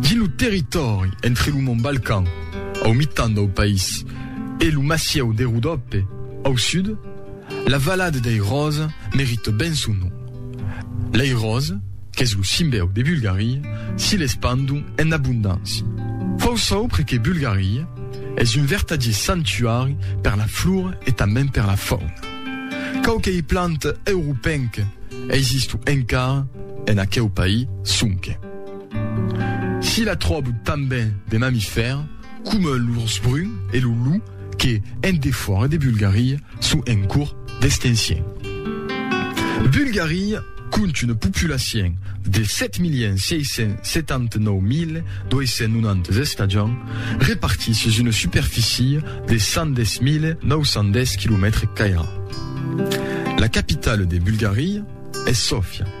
Dins lo territòri entre lo mont Balkan, au mitan dau país, e lo massieu de Rodope, au sud, la valada dei Ròse merita ben son nom. Lei ròse, qu'es lo simbèu de Bulgaria, si l'espandon en abondància. Fau çò per que Bulgaria es un vertadier santuari per la flora e tanben per la fauna. Quauquei planta europenca eisisto encara en aqueu país, sonque. S'i la tròb tanben de mamifèrs coma l'urs brun e lo lou que, en defòra de Bulgaria, son en cors d'extencion. Bulgaria compte una populacion de 7.679.290 estajants repartits sus una superficia de 110.910 quilomètres cairats. La capitala de Bulgaria es Sòfia.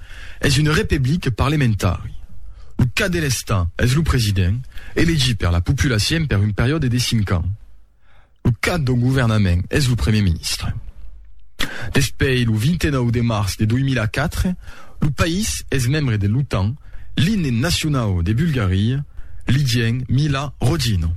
es un repeblic parlementari. Lo cap de l'Estat es lo president, elegit per la populacien per un periòde de cinc ans. Lo cap dau governament es lo premier ministre. Despei lo 29 de març de 2004, lo país es membre de l'OTAN, l'imne nacionau de Bulgaria, l'Igèn Mila Rodino.